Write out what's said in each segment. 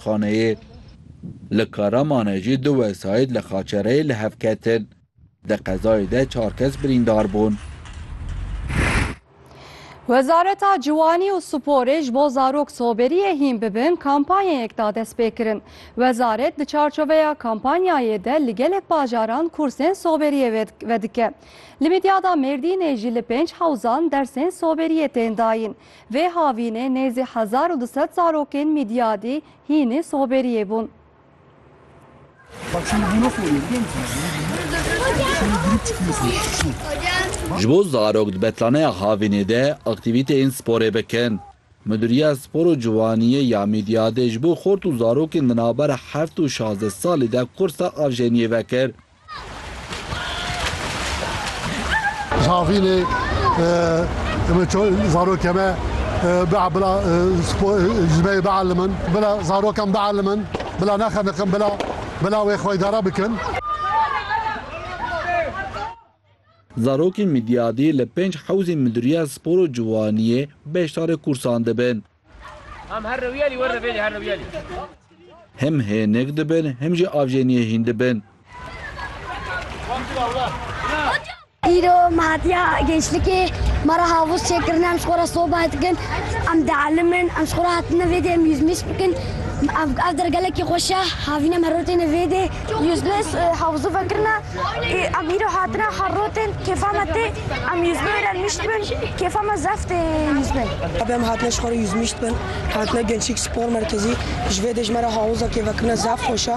Xaneyê li Karamanê jî du wesayît li Xaçereyê li hev ketin. Di qezayê de çar kes birîndar bûn. Wezareta Ciwanî û Sporê ji bo zarok soberiyê hîn bibin kampanyayek da destpêkirin. Wezaret di çarçoveya kampanyayê de li gelek bajaran kursên soberiyê vedike. Li Midyada Mêrdînê jî li pênc hewzan dersên soberiyê tên dayîn. Vê havînê nêzî hezar û du sed zarokên Mîdyadî hînî soberiyê bûn. Ji bo zarok di betlaneya havînê de aktîvîteyên sporê bikin. Midûriya Spor û Ciwaniyê ya Mîdyadê ji bo xort û zarokên di navbera heft û şazdeh salî de kursa avjeniyê vekir. Zavînê zarokê me bea bila ji me bielmin bila zarokan bielmin bila nexeniqin bila bila wê xwe idare bikin. Zarokên Midyadî li pênc hewzên Midûriya Spor û Ciwaniyê beşdarê kûrsan dibin. Him hênik dibin him jî avjeniyê hîn dibin. Îro mehatiya gençlikê me re havûz çêkirine em ji xwe re sohbet dikin, em dielimin, em ji xwe re hatine vê dê em yûzmîs bikin. Ev dergelekî xweş e havîn em her roj têne vê dê. Yüznes havzu vekirina ê emîro hatine herrotên kêfa me tê em yüzno êra nişt bin kêfa me zef tê yüzne. Tabi em hatine ji xwe re yüzmişt bin hatine gençlik spor merkezî ji vê dê ji me re hawiza kêfekirina zef xweş e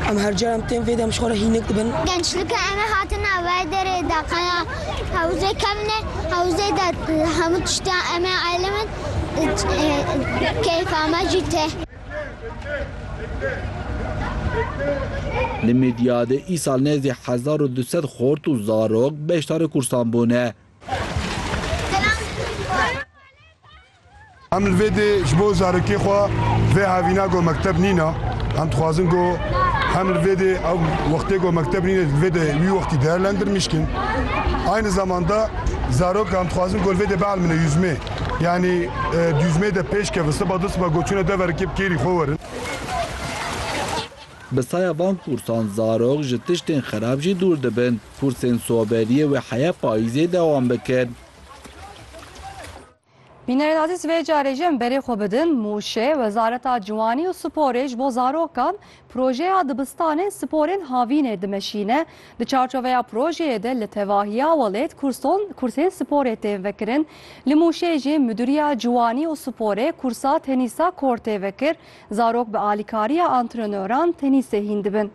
em her car em tên vê de em ji xwe re hînik dibin. Gençlike em ê hatin navê derê de qeya hewzê kevne hewzê de hemû tiştiyan em ê elîmin kêfa me jî tê. Li Midyadê îsal nêzdî hezar û du sed xort û zarok beşdarê kursan bûne. Em li vê dê ji bo zarokê xwe vê hevîna ku mekteb nîna, em dixwazin ku hem li vê dê ew wextê ku mekteb nîne li vê dê wî wextî değerlendirmişkin. Aynı zamanda zarok em dixwazin ku li vê dê bielmine yüzme. Yanî dûzmê de pêş keve siba du siba goçûne dever kê bi kêrî xwe werin. Bi saya van kûrsan zarok ji tiştên xerab jî dûr dibin. Kûrsên soberiyê wê heya payîzê dewam bikin. Bînerên azîz vê carê jî em berê xwe bidin Mûşê, Wezareta Ciwanî û Sporê ji bo zarokan Projeya Dibistanên Sporên Havînê dimeşîne, di çarçoveya projeyê de li tevahiya welêt kurson kursên sporê tên vekirin. Li Mûşê jî Midûriya Ciwanî û Sporê kursa tenîsa kortê vekir, zarok bi alîkariya antrenöran tenîsê hîn dibin.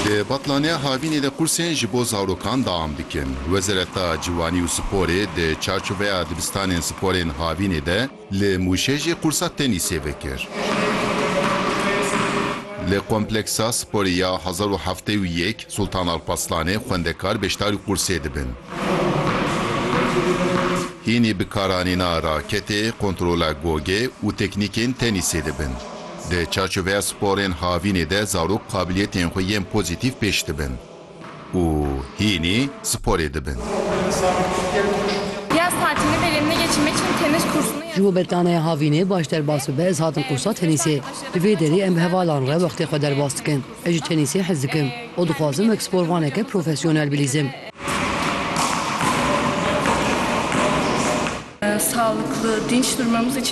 Di Betlaniya Havînê de kursên ji bo zarokan deam dikin. Wezareta Ciwanî û Sporê di çarçoveya Dibistanên Sporên Havînê de li Mûşê jî kursa tenîsê vekir. Li Kompleksa Sporê ya hezar û heftê û yek Sultan Alparslanê xwendekar beşdarî qursê dibin. Hînî bi karanîna raketê, kontrola gogê û teknîkên tenîsê dibin. Di çarçoveya sporên havînê de zarok qabiliyetên xwe yên pozîtîf pêş dibin û hînî sporê dibin. Ji bo berdaneya havînê baş derbas bibe ez hatim qursa tenîsê. Li vê derê em bi hevalan re wextê xwe derbas dikin. Ez ji tenîsê hez dikim û dixwazim wek sporvaneke profesyonel bilîzim.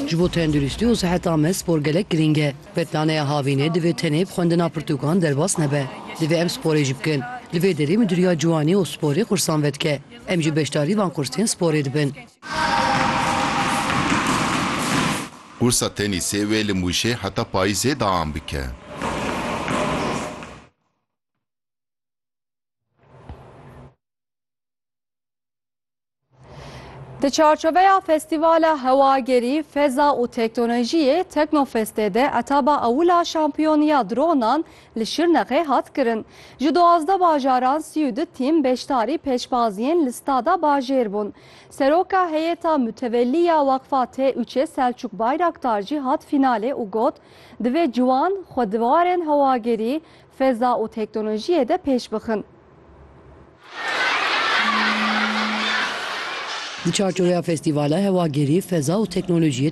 Ji bo tenduristî û siheta me spor gelek girîng e. Betnaneya havînê divê tenê bi xwendina pirtûkan derbas nebe. Divê em sporê jî bikin. Li vê derê Midûriya Ciwanî û Sporê xursan vedike. Em jî beşdarî van kursên sporê dibin. Kursa tenîsê wê li Mûşê heta payîzê deam bike. Di çarçoveya Festîvala Hewagerî, Feza û Teknolojiyê, Teknofestê de etaba ewil a şampiyoniya dronan li Şirnexê hat kirin. Ji duwazdeh bajaran sî û du tîm beşdarî pêşbaziyên li Stada Bajêr bûn. Seroka Heyeta Mutewellî ya Weqfa TUÇ'ê Selçûk Bayraktar jî hat fînalê û got, Divê ciwan xwe di warên hewagerî, feza û teknolojiyê de pêş bixin. Di çarçoveya festîvala hewagerî, feza û teknolojiyê